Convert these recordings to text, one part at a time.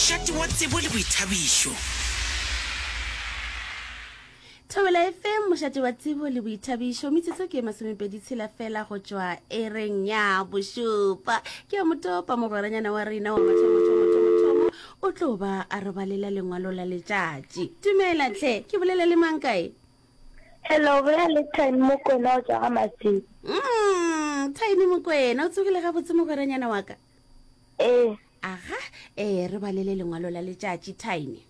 Šate wa tsebo le boithabišo. Thobela FM, mošate wa tsebo le boithabišo. Metsotso ke e masomepedi tshela fela go tšwa ereng ya bošupa. Ke ya motopa mogweranyana wa rena wa mathomothomothomothomo o tlo ba a re balela lengwalo la letšatši. Dumela tlhe, ke bolela le mang kae? Hello, bolela le Tiny Mokwena o tšwa ga Masilo. Mm, Tiny Mokwena, o tsogile gabotse mogweranyana wa ka? Ee. Aga, ee, re balele lengwalo la letšatši, Tiny.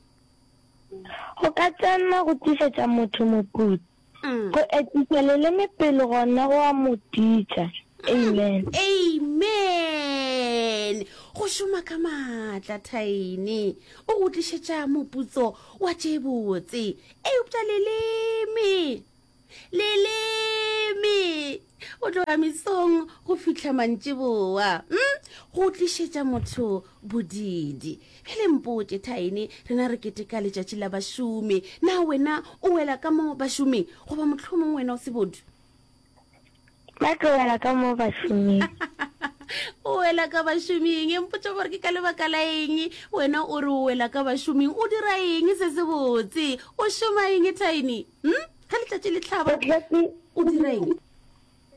Go ka tsenna go tlišetša motho moputso. Mm. Go etiša leleme pele gona go a mo titša. Amen. Amen! Go šoma ka maatla, Tiny. O go tlišetša moputso wa tše botse. Eupša leleme! leleme go tloga mesong go fihla mantšeboa mm? go tlišetša motho bodidi ge le mpotše thaene rena re keteka letšatši la bašomi na wena o wela ka mo bašoming goba mohlomong wena o sebodu ba tlo wela ka mo bašoming o wela ka bašoming e mpotsa gore ke ka lebaka la eng wena o re o wela ka bašoming o dira eng se se botse o šoma eng tiny hm ga letšatši le tlhaba o dira eng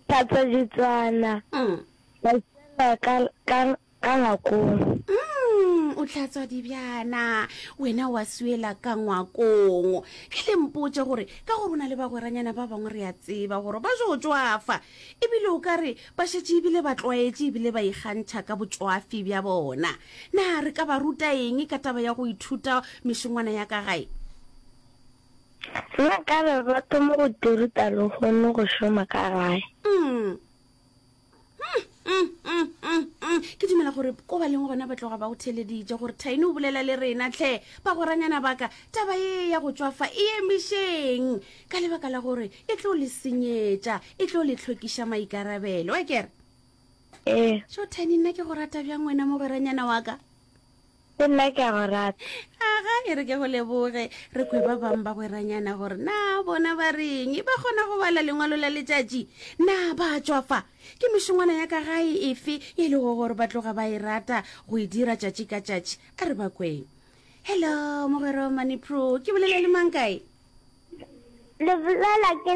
tlhatswa ditswana mm. ka Ka ngwakong. Umm, o hlatswa dibjana. Wena wa swela ka ngwakong. Ke le mpotše gore ka gore o na le bagweranyana ba bangwe re a tseba gore ba jo tšwafa. Ebile o ka re ba šetše ebile ba tlwaetše ebile ba ikgantšha ka botšwafi bja bona. Na re ka ba ruta eng ka taba ya go ithuta mešongwana ya ka gae? Nna ka re ba thoma go di ruta lehono go šoma ka gae. Umm. ke dumela gore ko ba leng gona ba tloga ba go theleditše gore thaine o bolela le rena tlhe ba goranyana baka taba e ya go tswafa e emišeng ka lebaka la gore e tlo le senyetša e tlo le tlhokiša maikarabelo a kere ee so thaine nna ke go rata bjang wena mogweranyana wa ka Le nna ke a go rata. Aga, e re ke go leboge. Re kwe ba bang ba gweranyana gore na bona ba reng. E ba kgona go bala lengwalo la letšatši? Na ba tšwa fa? Ke mešongwana ya ka gae efe e lego gore ba tloga ba e rata go e dira tšatši ka tšatši? A re ba kweng. Hello, mogwerwa Maniproo. Ke bolela le mang kae? Lebolela ke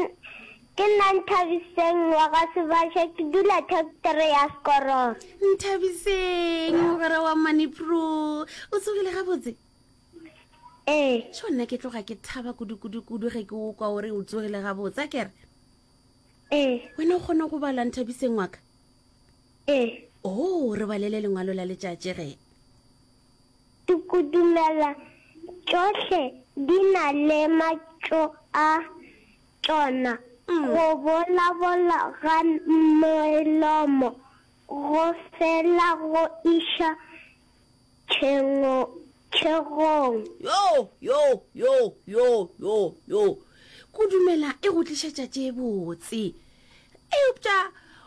ke nna Nthabiseng wa ga Sebasha ke dula thektere ya Sekororo. Nthabiseng mogwera wa Manipro o tsogile gabotse? Ee. Sho nna ke tloga ke thaba kudu-kudu-kudu ge ke o kwa o re o tsogile gabotse a kere? Ee. Wena o kgone go bala Nthabiseng wa ka? Ee. Oo re balele lengwalo la letšatši ge. Dikudumela tšohle di na le matšo a tšona. Go bolabola ga melomo go fela go iša tšhegong. Yo! Yo! Yo! Yo! Yo! Yo! Kudumela e go tlišetša tše botse. Eupša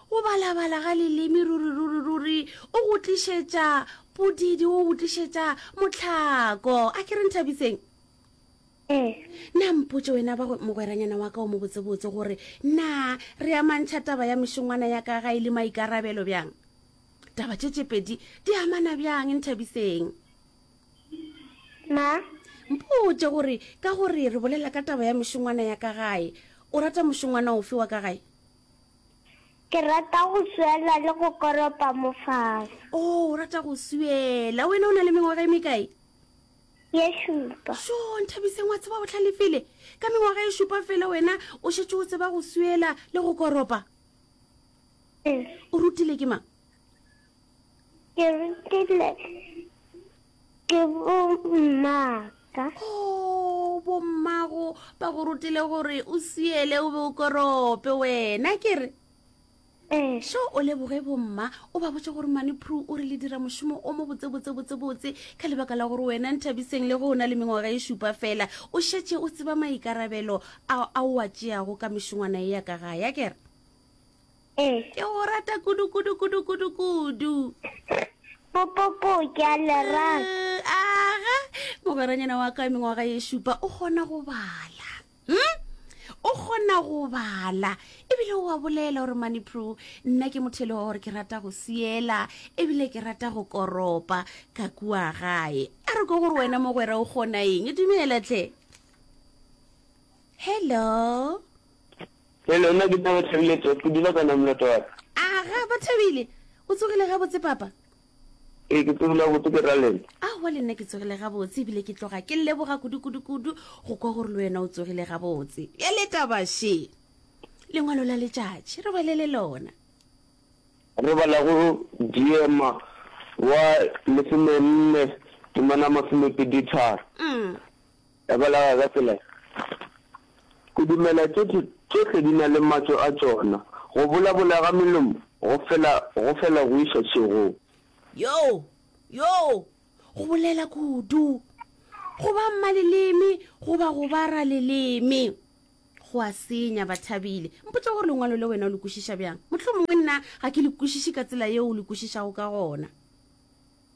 go balabala ga leleme ruri-ruri-ruri o go tlišetša podidi, o go tlišetša motlhako. A ke re Nthabiseng? Ee. Na mpotše wena ba mogweranyana wa ka o mo botsebotse gore na re amantšha taba ya mešongwana ya ka ga e le maikarabelo bjang? Taba tše tše pedi di amana bjang Nthabiseng? na mpotše gore ka gore re bolela ka taba ya mešongwana ya ka gae o rata mošongwana ofe wa ka gae ke rata go swela le go koropa mofasa o oh, o rata go swela wena o na le mengwaga e mekae ye šupa so nthabiseng wa tseba o tlhalefile ka mengwaga e šupa fela wena o šetse o tseba go swela le go koropa o rutile ke mang Ke rutile ke bommaka. Oh, bommago ba go rutile gore o siele o be o korope wena ke re ee. so o leboge bomma o ba botse gore mane pru o re le dira mošomo o mo botsebotsebotsebotse ka lebaka la gore wena nthabiseng le go o na le mengwaga e šupa fela o šetse o tseba maikarabelo a o a tšeago ka mešongwana e ya ka gaya kere Eh. Ke go rata kudu kudu kudu kudu kudu. Popopo ke a le rata. Eh, aga mogweranyana wa ka mengwaga ye šupa o kgona go bala. Hm? O kgona go bala ebile o a bolela gore mane pro nna ke motho e le wa gore ke rata go siela ebile ke rata go koropa ka kua gae a re ko gore wena mogwera o kgona eng dumela tle hello Hello, nna ke Taba Thabile Tot, ke dula ka Namlot wa ka. Aga, ba Thabile! O tsogile gabotse papa? Ee, ke tsogile gabotse, ke ra lena? Aowa, le nna ke tsogile gabotse, e bile ke tloga ke leboga kudu kudu kudu go kwa gore le wena o tsogile gabotse. Bjale taba she! Lengwalo la letšatši, re bale le lona. Re bala go Diema wa lesomenne, Temana masomepedi tharo. Umm. Ya bolawa ka tsela e. Go dumela tšohle, tšohle di na le matso a tšona. Go bolabola ga melomo go fela, go fela go iša šegong. Yoo, yoo, go bolela kudu. Go ba mmaleleme goba go ba raleleme go a senya. Bathabile, mpotše gore Lengwalo le wena o le kwešiša bjang. Mohlomongwe nna ga ke le kwešiše ka tsela yeo o le kwešišago ka gona.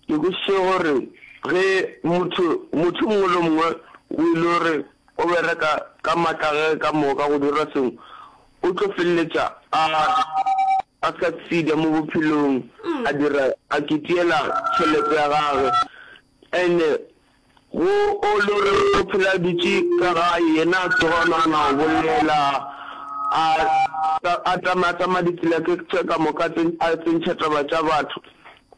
Ke kwešiše gore ge motho, motho yo mongwe le yo mongwe o e le gore o bereka ka matla a gagwe ka moka go dira sengwe, o tlo feleletša a, a succeeder mo bophelong, a dira, a kitiela tšhelete ya gagwe. And-e Go o lo re o phela dutše ka gae, yena a tsoga a nagana go bolela, a, a tsamaya tsamaya ditsela tše, tše ka moka tse, a tsentšha taba tša batho,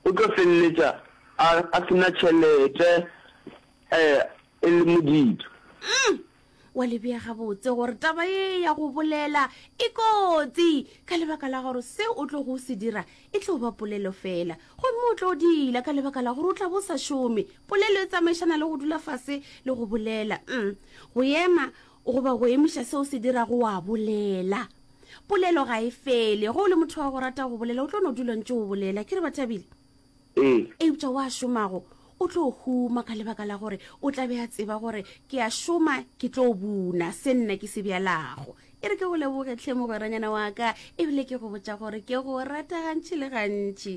o tlo feleletša a, a se na tšhelete, e, e le modibi. Wa le bea gabotse gore taba ye ya go bolela e kotsi ka lebaka la gore se o tlo go se dira e tlo ba polelo fela, gomme o tlo dila ka lebaka la gore o tla bo sa šome. Polelo e tsamaišana le go dula fase le go bolela. Um go ema goba go emiša se o se dirago wa bolela. Polelo ga e fele. Ge o le motho wa go rata go bolela, o tlo no dula ntše o bolela. Ke re, Bathabile? Ee. Eupša wa šomago o tlo huma ka lebaka la gore o tla be a tseba gore ke a šoma ke tlo buna se nna ke se bjalago. E re ke go leboge tlhe mogweranyana wa ka ebile ke go botša gore ke go rata gantši le gantši.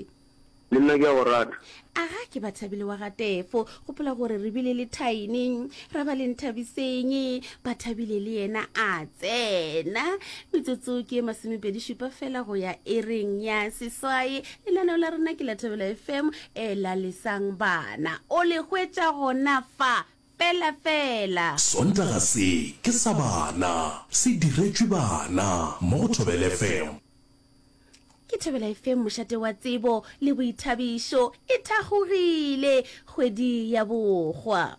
Le nna ke a go rata. Aga ke Bathabile wa ga Tefo gopola gore re bile le thaene ra ba leng thabiseng ba thabile le yena a tsena metsotso ke e masomepedi šupa fela go ya e reng ya seswae lenaneo la rena ke la thabela fm e la lesang bana o le hwetša gona fa fela fela sontaga se ke sa bana se diretšwe bana mo go thobele fm Ke thobela e feng mošate wa tsebo le boithabišo e thakgogile kgwedi ya bokgwa?